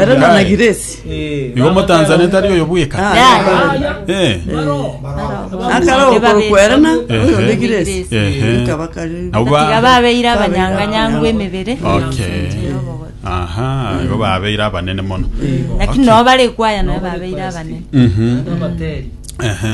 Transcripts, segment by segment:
Ere na na Giresi. Igo Motanzania tari oyo bweka. Ah, Yeah. yeah. Eh. Akara okokwerana Ehe. oyo ne Giresi. Ehe. Ikaba kari. Nabo ba- Tiga babeire abanyanganyangu emebere Okay. Aha, igo babeire abanene mono. lakini nabo bare kwaya naye babeire abanene Mhm. Ehe.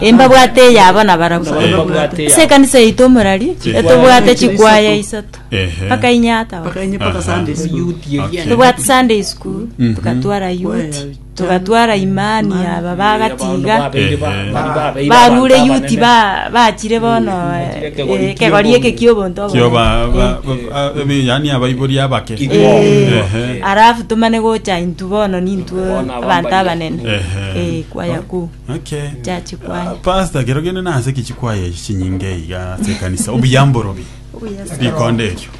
Imbabwate eyabo nabarabwo. Imbabwate eyabo. Ase ekanisa yaito omorari, etobwate chikwaya isato, Ehe. mpaka inye ataba. mpaka inye mpaka Aha. Sunday school. Youth eria. Okay. Tobwate Sunday school, Mhm. tukatwara youth, Kwaya. tukatwara imani Imani. aba bagatiga. Babeire ba- Ehe. bari babeire Barure abanto youth abanene. ba bachire bono Bachire eh, ekegori eh, kegori ki'obonto. eke ki'obonto obo. Kio ba- ba- ba- ebi- yaani abaibori abake Kiko. Eh, Ehe. Arafu tumane gocha intu bono nintu Bono abanto abambaria. abanene. Ehe. Eh, kwaya kuu. Okay. Chachikwaya. Ah, Pastor, kero gende nase ki chikwaya echi chinyinge iga ase ekanisa. Obuyamboro bi. Obuyas- Rikonde erio.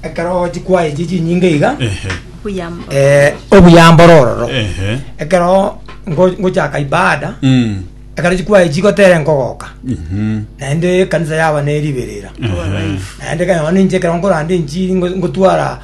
ekero chikwaya echi chinyinge iga Ehe. Obuyambo. eh, obuyamboro ororo Ehe. ekero ngo- ngochaka ibada Mm. ekero chikwaya echi gotere nkogoka Mhm. naende ekanisa yaba neriberera Ehe. naende kanyama ninche ekero nkorande enchiri ngo- ngotwara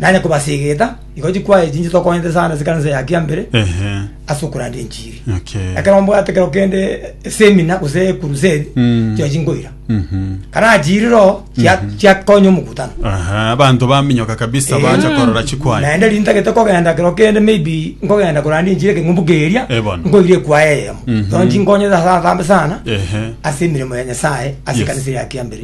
Nanye kobasegeta, igo chikwaye chinche tokonyete sana ase ekanisa ya kiambere Ehe. ase okoranda enchiri. Okay. Ekero mbwate kero kende semina gose ekurusedi, Mm. chirochio chinkoira. Mhm. Karachiirire oo, chia- chiakonya omokutano. Aha, abanto baminyoka kabisa Eh. bacha korora chikwaya. naende riri ntagete kogenda kero kende maybe nkogenda koranda enchiri ekeng'umbu keria Eh, bono. nkoire ekwaya eyemo Mhm. so nchinkonyete ase atambe sana Ehe. ase emiremo ya nyasaye ase Yes. ekanisa ya kiambere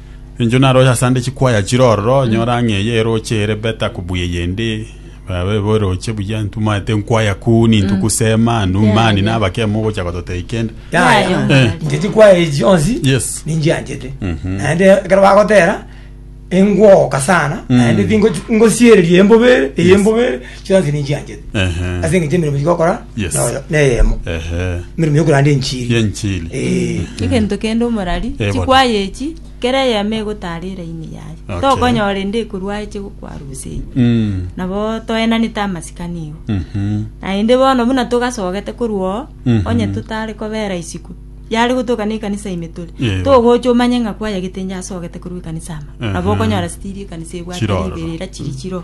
Inche naroche ase ande chikwaya chire ororo, nyore ang'e eye eroche ere beta kobu eyende. Baba ebe eroche buya, intwe mwaete nkwaya kuni, intwe kusema, nu mani Yaya. nabake mogocha gototei kende. Yaya, Yaya. Eh. inche chikwaya echi chionsi Yes. ninchianchete Mhm. naende ekero bagotera engwoka sana naende tingo- ngosiereria embobe eye Yes. embobe chionsi ninchianchete Ehe. ase engencho emeremo chigokora Yes. noyo neyemo Ehe. emeremo yokoranda enchiri Yenchiri. Eh. egento kende omorari Eh, chikwaya echi kera eyemo egotara eraini yaye Okay. tokonyora ende ekorwa eche gokwarusia eyi Mm. nabo toenanete amasikani igo Mhm. naende bono buna togasogete korwa oo Mhm. onye totare kobera isiko yare gotoka na ekanisa ime tore Yego. togocha omanye ng'a kwayagete inche asogete korwa ekanisa ama Ehe. nabo okonyora stiri ekanisa ebwate Chiroro. riberera chiri chiro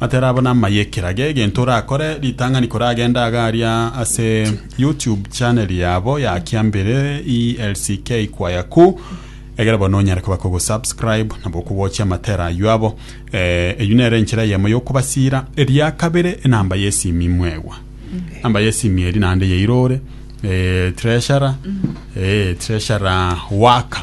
Atera abwo namaye ekeraga egento orakore ritang'ani koragenda iga aria ase YouTube channel yabo ya Kiambere ELCK Kwaya Ku egere bono onyare koba kogo subscribe nabo okogochia amatera aywo abo eh, eywo nere enchera eyemo yokobasira eria kabere enamba yesimi mwegwa namba yesimi eri naende yairore eh, treasurer eh, treasurer waka